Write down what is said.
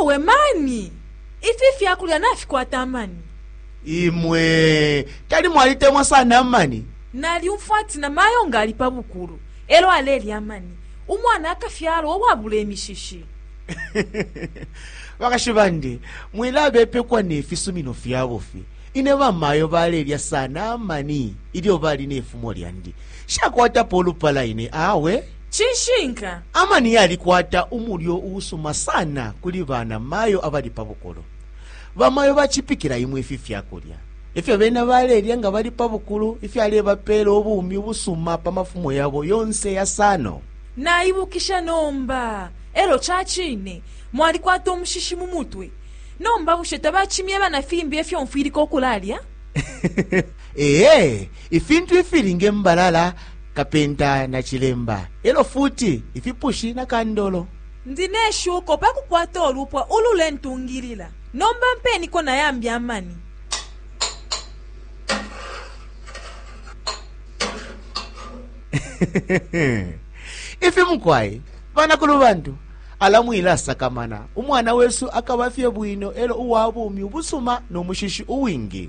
Awe mani! Ifi ifyakulya nafikwata amani. Imwe tali mwalitemwa sana amani? Nalyumfwa ati na mayo nga ali pa bukulu elyo alelya amani, umwana akafyalwa uwabula imishishi. Bakashi bandi, mwilabepekwa ne fisumino fya bufi. Ine bamayo balelya sana amani ilyo bali ne fumo lyandi. Nshakwatapo ulupala ine awe. Cishinka. Amani yalikwata umulyo uusuma sana kuli bana mayo abali pa bukulu. Bamayo bacipikila imwe ifi fyakulya efyo bena balelya nga bali pa bukulu ifyalebapela ubumi ubusuma pa mafumo yabo yonse yasano. Naibukisha nomba. Elo cacine mwalikwata umushishi mu mutwe. Nomba bushe tabacimyeba na fimbi efyo mfwilika ukulalya? Ee. Ifintu ifili nge mbalala, kapenta na cilemba, e lyo futi ifipushi na kandolo. Ndi ne shuko pa kukwata ulupwa ululentungilila. Nomba mpeniko na yambi amani. Ifi mukwai, banakulubantu, ala mwilasakamana. Umwana wesu akaba fye bwino e lyo uwa bumi ubusuma no mushishi uwingi.